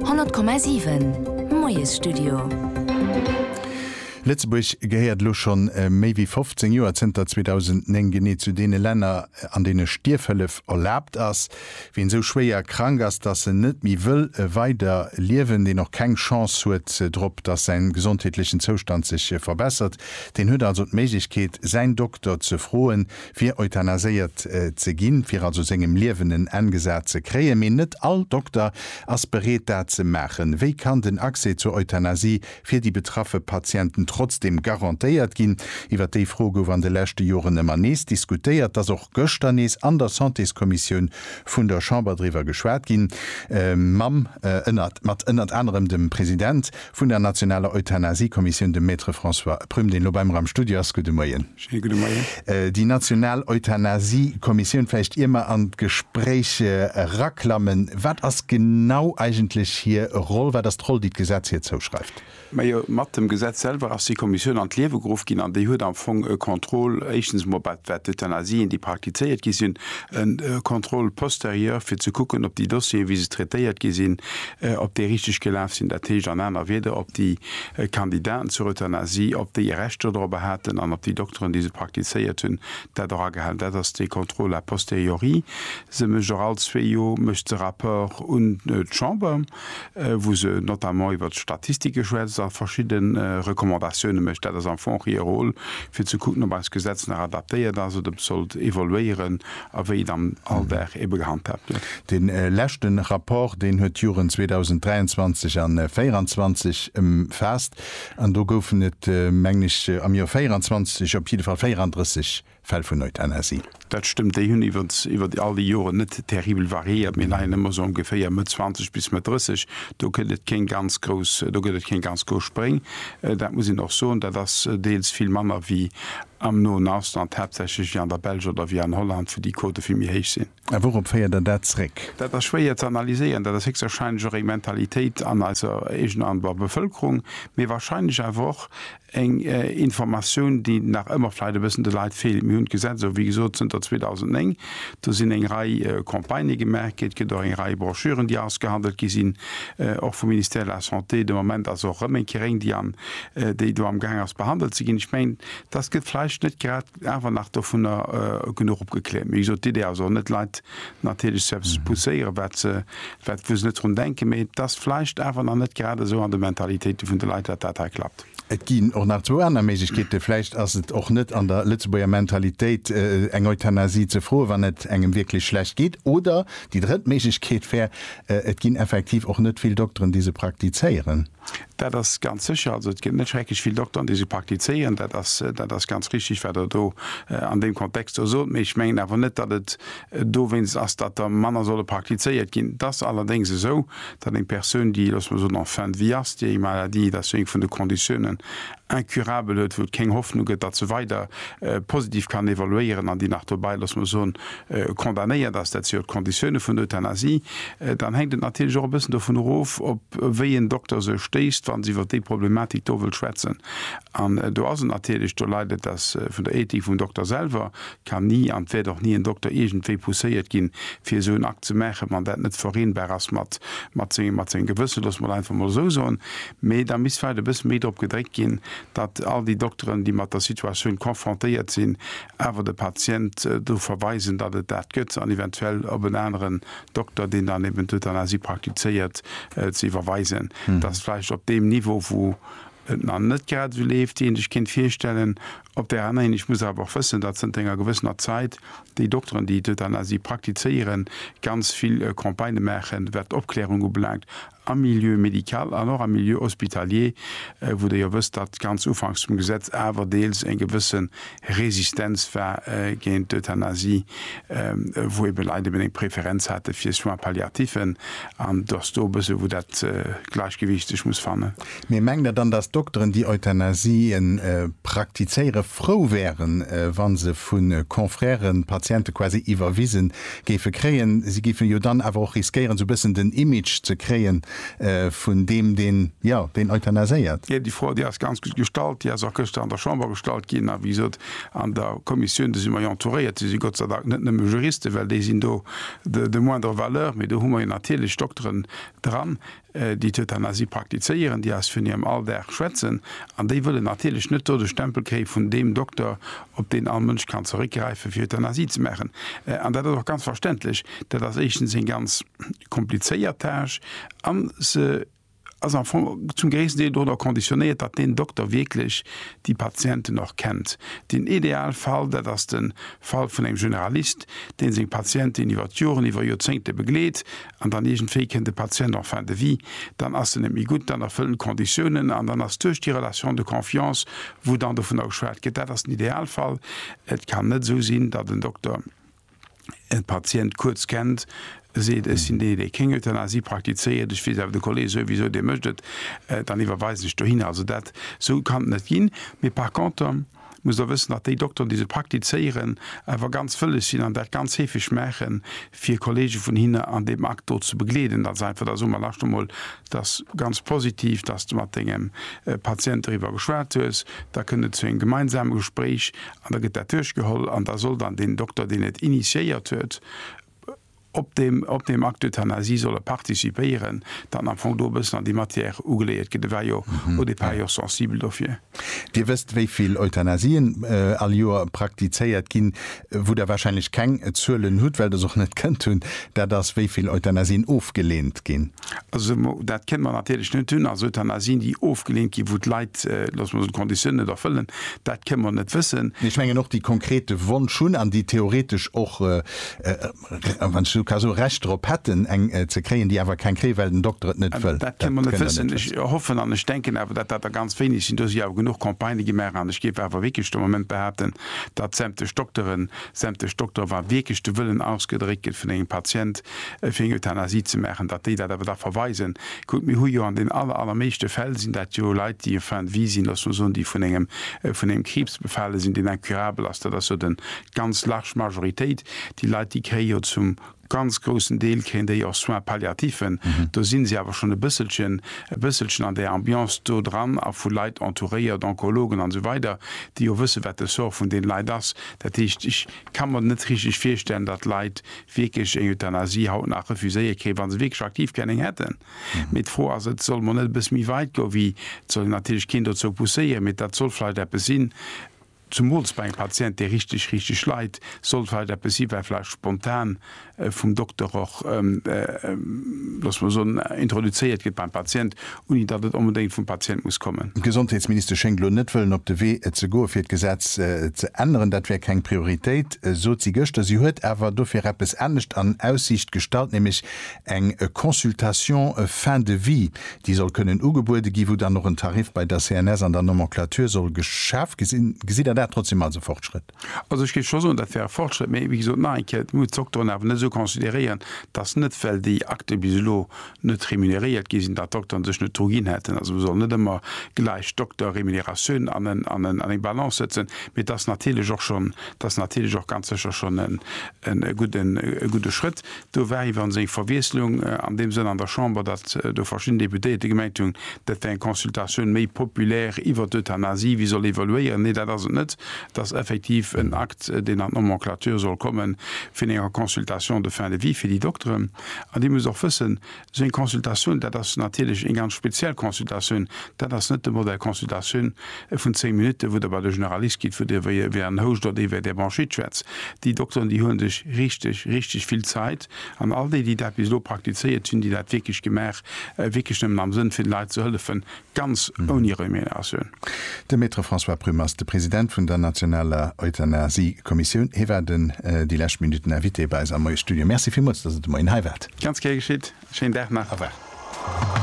100,7 Moiesstudio. Lëtzebuerg gehéiert elo scho méi wéi 15 Joer, zënter 2009 genee, zu deene Länner, an deene Stierfhëllef erlaabt ass. Wien esou schwéier krank ass, dass en net méi wëll weider liewen, deen och keng Chance huet drop, dass säin gesondheetlechen Zoustand sech verbessert, deen huet also d'Méiglechkeet, säin Dokter ze froen, fir euthanaséiert ze ginn, fir also sengem Liewen en Enn gesat ze kréien. Mee net all Dokter ass bereet, dat ze maachen. Wéi kann den Accès zur Euthanasie fir déi betraffe Patienten trotzdeem garantéiert ginn? Iwwer déi Fro gouf an de leschte Joren ëmmer nees diskutéiert. Et ass och gëschter nees an der Santéskommissioun vun der Chamber driwwer geschwat ginn, mam, ënnert, mat ënnert anerem dem President. Vun der nationaler Euthanasie-Kommissioun, de Maître François Prüm, deen elo bei mer am Studio ass. Gudde Moien. Schéine gudde Moien. Déi national Euthanasie-Kommissioun, vläicht ier mer an d'Gespréich eraklammen, wat ass genau eigentlech hir Roll? Wat ass d'Roll, déi d'Gesetz hir zouschreift? Majo, mat dem Gesetz selwer ass déi Kommissioun an d'Liewe geruff ginn an déi huet am Fong e Contrôle, éischtens emol wat d'Euthanasien, déi praktizéiert gi sinn, e Contrôle posterieur, fir ze kucken, ob déi Dossieren, wéi se traitéiert gi sinn, op déi richteg gelaf sinn, dat heescht an aner Wieder, op déi Kandidaten zur Euthanasie, op déi e Recht dodrobber haten an op déi Dokteren, déi se praktizéiert hunn, dat och agehalen. Dat ass dee Contrôle a posteriori. Se mécht och all zwee Joer mécht se Rapport un d'Chamber, wou se notamment iwwert d'Statistike schwätzt a verschidde Recommandatioune mécht. Dat ass am Fong hir Rôle, fir ze kucken, ob eist Gesetz nach adaptéiert ass oder ob et sollt evoluéieren. a wéi et am Alldag ebe gehandhaabt gëtt. Dee leschte Rapport, deen huet d'Joren 2023 an 24 ëmfaasst an do goufen et, mengen ech, am Joer 24 op jidde Fall 34 Fäll vun Euthanasie. Dat stëmmt. Déi hunn iwwert all déi Joren net terribel variéiert. Mir leien ëmmer sou ongeféier Mëtt 20 bis Mëtt 30. Do gëtt et keng ganz grouss, do gëtt et keng ganz grouss Spréng. Dat muss een och soen. Dat ass deels vill manner wéi Am noen Ausland, haaptsächlech ewéi an der Belsch oder ewéi an Holland, wou déi Quote vill méi héich sinn. A wourop féiert Der dat zréck? Dat ass schwéier ze analyséieren. Dat ass héchstwahrscheinlech och eng Mentalitéit an eiser eegener, an der Bevëlkerung, mee wahrscheinlech awer och eng Informatioun, déi nach ëmmer vläicht e bëssen de Leit feelt. Mir hunn d'Gesetz esou wéi gesot zënter 2009. Do sinn eng Rei Campagnë gemaach gi, et gëtt och eng Rei Broschüren, déi ausgehandelt gi sinn, och vum Ministère de la Santé. De Moment ass och erëm eng kéier eng, déi an déi do amgaang ass behandelt ze ginn. Ech mengen, dass gëtt vläicht net grad awer nach dovunner genuch opgekläert. Mee wéi gesot, d'Idee ass och net, Leit natierlech ze eppes ze pousséieren, wat se, wat, wou se net drun denken. Mee et ass vläicht awer nach net grad esou an de Mentalitéite vun de Leit, dat dat hei klappt. Et ginn och nach zwou aner Méiglechkeeten. Vläicht ass et och net an der Lëtzebuerger Mentalitéit, eng Euthanasie ze froen, wann et engem wierklech schlecht geet. Oder déi drëtt Méiglechkeet wär, et ginn effektiv och net vill Dokteren, déi se praktizéieren. Dat ass ganz sécher. Also et ginn net schrecklech vill Dokteren, déi se praktizéieren. Dat ass, dat ass ganz richtig, wat Der do an deem Kontext do sot. Mee ech mengen awer net, datt et dowéinst ass, datt der manner solle praktizéiert ginn. Et ass allerdéngs esou, datt eng Persoun, déi, loosse mer soen, en fin de vie ass, déi eng Maladie, dat ass jo eng vun de Konditiounen, incurable huet, wou et keng Hoffnung gëtt, datt se weider positiv kann evoluéieren an déi nach dobäi, loosse mer soen, condamnéiert ass, dat si jo d'Konditioune vun der Euthanasie, dann hänkt et natierlech och e bëssen dovun erof, op wéi een Dokter se stéisst, wa se iwwer déi Problematik do wëll schwätzen. An do ass et natierlech, do leit et ass vun der Ethik vum Dokter selwer, kann ni an et wäert och ni en Dokter iergendwéi pousséiert ginn, fir esou en Akt ze maachen, wann dat net vereenbar ass mat sengem Gewëssen, loosse mer et einfach emol esou soen. Mee da misst vläicht e bësse méi drop gedréckt ginn, datt all déi Dokteren, déi mat der Situatioun confrontéiert sinn, awer de Patient drop verweisen, datt et dat gëtt, an eventuell op en aneren Dokter, deen dann eben d'Euthanasie praktizéiert, ze iwwerweisen. Datt vläicht op deem Niveau, wou et nach net grad esou leeft, wéi ee sech kéint virstellen. Op där anerer Hinsicht muss ee awer och wëssen, datt zënter enger gewëssener Zäit déi Dokteren, déi d'Euthanasie praktizéieren, ganz vill Campagnë maachen, wat d'Opklärung ubelaangt, am Milieu médical an och am Milieu hospitalier, wou Der jo wësst, datt ganz ufanks vum Gesetz awer deels eng gewësse Resistenz war géint d'Euthanasie, wou ebe Leit eben eng Preferenz hate fir Soins palliatifs, an datt do e bësse wou dat Gläichgewicht sech muss fannen. Mee mengt Der dann, dass Dokteren, déi Euthanasien praktizéiere frou wären, wa se vu Confrèren d'Patiente quasi iwwerwise géife kréien? Si géife jo dann awer och riskéieren, esou e bëssen den Image ze kréie vun deem, deen, jo, deen euthanaséiert. Jo, déi Fro, déi ass ganz gutt gestallt. Déi ass och gëschter an der Chamber gestallt ginn. A wéi gesot, an der Kommissioun, do si mer jo entouréiert. Do si Gott sei Dank net nëmme Juristen, well déi sinn do de moindre valeur. Mee do hu mer jo natierlech Dokteren dran. déi d'Euthanasie praktizéieren, déi eis vun hirem Alldag schwätzen, an déi wëllen natierlech net do de Stempel kréie vun deem Dokter, op deen all Mënsch kann zeréckgräifen, fir Euthanasie ze maachen. An dat ass och ganz verständlech. Dat ass éischtens eng ganz komplizéiert Tâche an se ass am Fong zum gréissten Deel doranner conditionnéiert, datt deen Dokter wierklech déi Patienten och kennt. Den Idealfall, dat ass de Fall vun engem Generalist, dee seng Patienten iwwer d'Joren, iwwer Joerzéngte begleet an dann iergendwéi kënnt e Patient en fin de vie, dann ass en net méi gutt, dann erfëllt en d'Conditiounen an dann ass duerch déi Relation de confiance, wou dann dovunner geschwat gëtt, dat ass den Idealfall. Et kann net esou sinn, datt en Dokter e Patient kuerz kennt, seet, ech sinn dee, dee keng Euthanasie praktizéiert, ech weess awer, de Kolleg souwisou, dee mécht et, dann iwwerweisen ech dohinner. Also dat, esou kann et net ginn. Mee par contre. muss Der wëssen, datt déi Dokteren, déi se praktizéieren, awer ganz wëlles sinn an dat ganz heefeg maachen, fir Kollege vun hinne an deem Akt do ze begleeden. Dat ass einfach, da soe mer lasscht emol, dat ass ganz positiv, datt s de mat dengem Patient doriwwer geschwat hues. Da kënnt et zu engem gemeinsame Gespréich an da gëtt dat duerchgeholl an da soll dann deen Dokter, deen et initiéiert huet, op deem, op deem Acte d'euthanasie solle participéieren, dann am Fong do e bëssen an déi Matière ugeléiert ginn. E war jo au départ jo och sensibel dofir. Dir wësst, wéi vill Euthanasien all Joer praktizéiert ginn. Wou Der wahrscheinlech keng Zuelen hutt, well Der se och net kënnt hunn, dat ass, wéi vill Euthanasien ofgelehnt ginn. Also dat kënnen mer natierlech net hunn. Also Euthanasien, déi ofgeleent ginn, wou d'Leit, loosse mer soen, d'Konditiounen net erfëllen, dat kënnen mer net wëssen. Mee ech mengen och, déi konkret de Wonsch hunn an déi theoretesch och, wann ech esou ka soen, Recht drop hätten, eng ze kréien, déi awer keng kréien, well den Dokter et net wëll. Dat kënnen mer net wëssen. Ech hoffen an ech denken awer, datt dat der ganz wéineg sinn. Do si jo awer genuch Campagnë gemaach an ech géif awer wierklech de Moment behaapten, datt sämtlech Dokteren, sämtlech Doktere, wa wierklech de Wëllen ausgedréckt gëtt vun engem Patient, fir eng Euthanasie ze maachen, datt déi dat awer da verweisen. Kuckt, mir hu jo an den aller, allermeeschte Fäll sinn dat jo Leit, déi en fin de vie sinn, lass mol soen, déi vun engem, vun engem Kriibs befale sinn, deen incurabel ass. Dat ass jo de ganz large Majoritéit. Déi Leit, déi kréie jo zum ganz groussen Deel kréien déi och Soins palliativen. Do si se awer schonn e bësselchen, e bësselchen an där Ambiance do dran a vu Leit entouréiert, Onkologen an esou weider, déi jo wësse wat de Sort vun deene Leit ass. Dat heescht, ech ka mer net richteg virstellen, datt Leit wierklech eng Euthanasie haut nach refuséie kéint, wa se wierklech aktiv gär eng hätten. Mee d'Fro ass, et soll mol net e bësse méi weit goen, wéi, et soll een natierlech keen dozou pousséieren, mee dat soll vläicht eppes sinn, zumools bei engem Patient, dee richteg, richteg leit, soll et vläicht eppes sinn, wat vläicht spontan vum Dokter och, loosse mer soen, introduzéiert gëtt beim Patient, ouni datt et onbedéngt vum Patient muss kommen. D'Gesondheetsministesch schéngt elo net wëllen op de Wee ze goe fir d'Gesetz ze änneren. Dat wär keng Prioritéit, sot si gëschter. Si huet awer dofir eppes anescht an Aussiicht gestallt, nämlech eng Consultation fin de vie, déi soll kënnen ugebuede gi, wou dann och en Tarif bei der CNS an der Nomenclature soll geschaf ginn. Gesitt Der dat trotzdeem als e Fortschrëtt? Also ech géif scho soen, dat wär e Fortschrëtt. Mee wéi gesot, nach eng Kéier, et muss d'Dokteren awer net esou consideréieren, datt net well déi aktuell bis elo net remuneréiert gi sinn, datt d'Dokteren sech net dru ginn hätten. Also mer sollen net ëmmer gläich Dokter-Remuneratioun an en, an en, an eng Balance sëtzen. Mee et ass natierlech och schonn, et ass natierlech och ganz sécher schonn e gudden, e gudde Schrëtt. Do war iwwer seng Verwiesslung an deem Sënn an der Chamber, datt do verschidden Deputéierte gemengt hunn, dat wär eng Consultatioun méi populaire iwwer d'Euthanasie, wéi soll evaluéieren. Nee, dat ass et net. Et ass effektiv en Akt, deen an d'Nomenclature soll kommen, vun enger Consultation de fin de vie fir déi Dokteren. An Dir musst och wëssen, Seng Consultatioun, dat ass natierlech eng ganz speziell Consultatioun. Dat ass net de Modell Consultatioun vun zéng Minutten, wou Der bei de Generalist gitt, wou Dir wéi en Houscht oder wéi Är Bronchite schwätzt. Déi Dokteren, déi huele sech richteg, richteg vill Zäit. An all déi, déi dat bis elo praktizéiert hunn, déi dat wierklech gemaach, wierklech nëmmen am Sënn vun de Leit ze hëllefen. Ganz ouni Remuneratioun. De Maître François Prüm ass de President vun der nationaler Euthanasie-Kommissioun. Hie war den déi lescht Minutten Invité bei eis am Moie Studio. Merci villmools, datt Der de Moien hei waart. Ganz gär geschitt. Schéinen Dag nach. Au revoir.